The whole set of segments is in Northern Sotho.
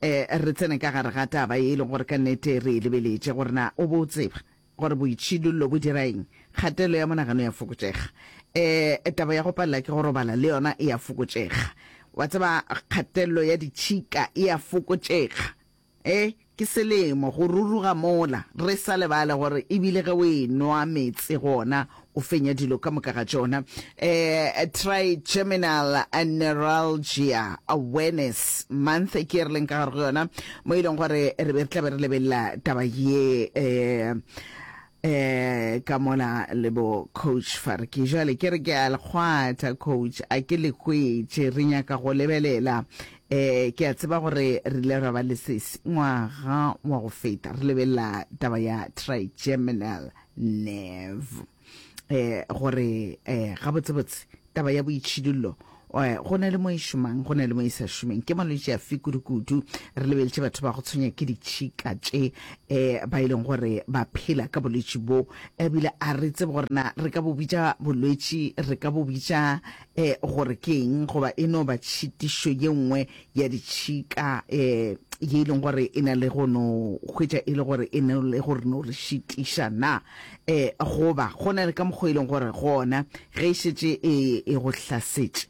E re tsene ka gare ga taba ye e lego gore ka nnete re e lebeletše, gore na o bo o tseba gore boitšhidullo bo dira eng? Kgatelo ya monagano ya fokotšega. E, taba ya go palela ke go robala le yona e a fokotšega. Wa tseba, kgatello ya ditšhika e a fokotšega. E, ke selemo go ruruga mola. Re sa lebale gore e bile ge o e-nwa meetse gona o fenya dilo ka moka ga tšona um trigeminal neuralgia awareness month ke e re leng ka gare go yona mo e leng gore re be re tla be re lebelela taba ye um eh ka mola le bo coach farki jale ke re ke a lekgwatha coach a ke le hwetše re nyaka go lebelela eh ke a tseba gore re ile ra ba le sesi ngwaga wa go feta re lebelela taba ya trigeminal Nev. Eh, gore, eh, gabotsebotse, taba ya boitšhidullo, eh, go na le mo e šomang, go na le mo e sa šomeng. Ke malwetši afe kudu-kudu? Re lebeletše batho ba go tshwenya ke ditšhika tše, eh, ba e leng gore ba phela ka bolwetši bo, ebile a re tsebe gore na re ka bo bitša bolwetši, re ka bo bitša, eh, gore ke eng, goba e no ba tšhitišo ye nngwe ya ditšhika um ye e leng gore e na le go no hwetša e le gore e ne le gore no re šitiša na um goba go na le ka mokgwa e leng gore gona ge e šetše e e go hlasetše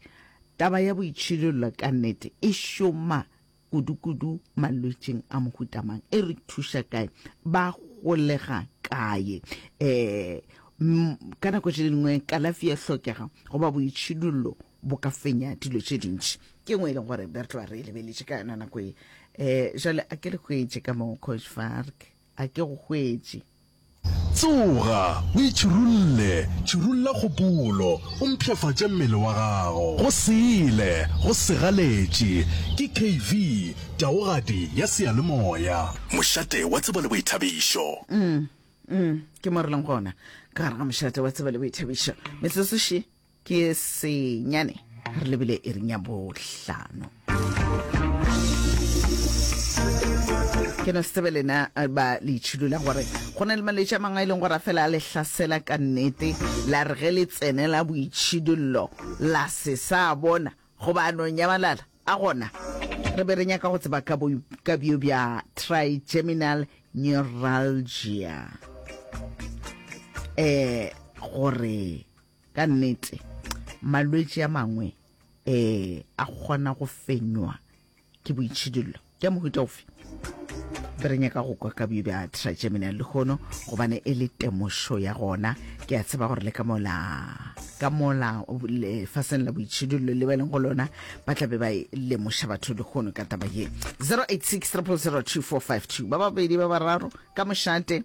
taba ya boitšhidollo ka nnete e šoma kudukudu malwetšing a mohutamang e re thuša kae ba golega kae um ka nako tše dingwe kalafi ya hlokega goba boitšhidollo bo ka fenya dilo tše dintši ke ngwe e leng gore be re tloa re e lebeletše ka yona nako e um jale a ke le hwetše ka moo coshfark a ke go hwetše tsoga o itšhirulle tšhirulla kgopolo o mpšhafatše mmele wa gago go sele go segaletše ke kv taogadi ya seyalemoya mošate wa tsebo le boithabišo mm, mm, ke mo re leng gona ka gare ga mošate wa tsebo le boithabišo metsotso še Ke senyane re lebile iring ya bohlano. ke no se tsebe lena eh, ba le itšhilola gore go na le malwetse a mangwe a e leng gore a fela a le hlasela ka nnete la re ge le tsene la boitšhidollo la se sa bona goba a no nyamalala a gona re be re nyaka go tseba ka bo- ka bjo bja trigeminal neuralgia um gore Ka nnete, malwetši a mangwe e a kgona go fenywa ke boitšhidullo. Ke a mohuta ofe? Be re nyaka go kwa ka bjo bja trigeminal lehono gobane e le temošo ya gona. Ke a tseba gore le ka mola ka mola lefaseng la boitšhidullo le ba leng go lona ba tla be ba e lemoša batho lehono ka taba ye 086 ba babedi ba bararo ka mošate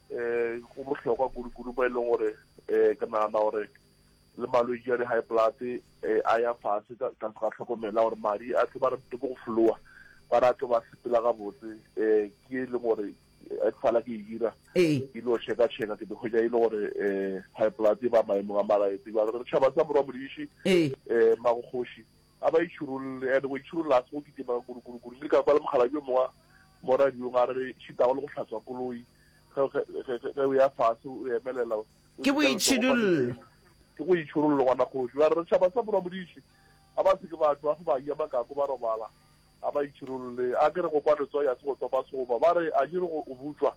um go bohlokwa kudu-kudu mo e leng gore um ke nagana gore le malwetši a di-high blood um a ya fase ka tlase ga tlhokomela gore madi a tlo ba re ke go flowa ba re a tlo ba sepela gabotse um ke e leng gore e fala ke e dira ee. ke lo checka checka ke dikgwetsa e le gore um high blood e ba maemong a malaetse ba re tšhaba sa morwa modiši um ee. eh, magokgoši A ba itšhirolle, and go itšhirolla ga se go kitima kurukuru. Ke ile ka kwala mokgalabje yo mongwe wa mo radiong a re šitago le go hlatswa koloi ge ge ge ge o ya fase o emelela o Ke dika letsogo fa boitšhidullo. leseng. Ke go itšhirolla ngwana kgoši. Ba re tšhaba sa morwa modiši a ba se ke ba tšwa ge ba ja makako ba robala. A ba itšhirolle. A ke re go kwa letsogo ya se go topa segoba. Ba re a ke re go o butšwa.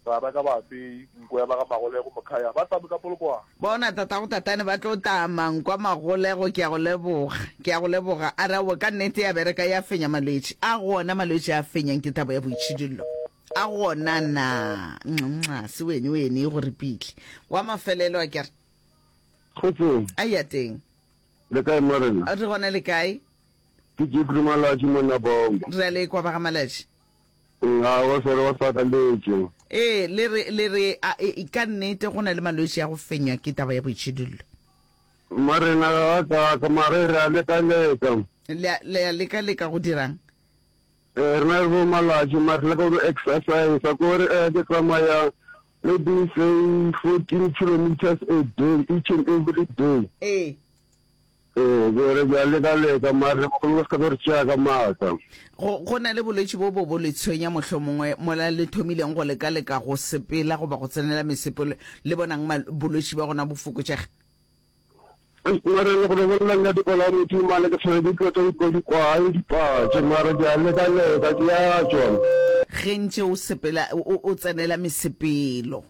Bana ka baapei, nko ya ba ga Magolego, Mokhaya, ba tame ka Polokwane. Bona, tatago Tatane ba tlo tama, nkwa Magolego, ke a go leboga, ke a go leboga. A re, Aowa, ka nnete ya bereka, ya fenya malwetši. A go ona malwetši a fenyang ke thabo ya boitšhidullo? A go ona na? Nxa, se wene, wene, e go ripitli. Wa mafelelo, a ke re. Kgotsong. A ya teng. Le kae Morena? Re gona le kae? Ke Jeffrey Malatši monna Bongo. Re a le kwa ba ga Malatši. Nxa o swere o sakaletše. Ee, le re, le re, a, e, e, ka nnete go na le malwetši a go fenywa ke taba ya boitšhidullo. Marena ga a kaaka, mare re a leka-leka. Le a, le a leka-leka go dira'ng? Ee, re na le bo malatši, mare re leka go exercisa, ko re, ee, ke tsamaya maybe say fourteen kilometres a day, each and every day. Ee. Ee, ke re ke a leka-leka, mare bagolo ba se ka ba re tšea ka maatla. Go, go na le bolwetši bo bo bo le tshwenya mohlomongwe mola le thomileng go leka-leka go sepela goba go tsenela mesepelo, le bonang mal, bolwetši bja gona bo fokotšega? Mara le go re bolela nna di bolawa modumo mane ke tshwere ke tlotla utlwa dikwae dipatše mara ke a leka-leka ke a tšwa. Ge ntše o sepela o, o tsenela mesepelo.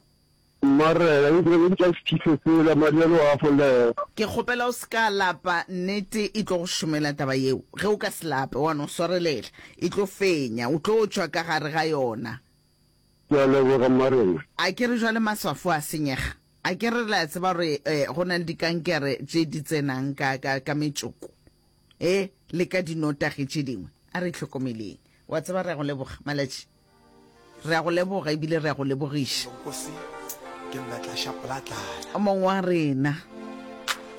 Marena, e bile le ntša sethife sela, Mariano a folega. Ke kgopela o se ka lapa, nnete e tlo go šomela taba yeo. Ge o ka se lape, wa no swarelela, e tlo fenya, o tlo tšwa ka gare ga yona. Ke a leboga, Marena. A ke re jwale maswafo a senyega? A ke re le a tseba gore go na le dikankere tše di tsenang ka, ka, ka metšoko e, le ka dinotagi tše dingwe? A re itlhokomeleng. O a tseba, re a go leboga, Malatši. Re a go leboga ebile re a go lebogiša, Mong wa rena.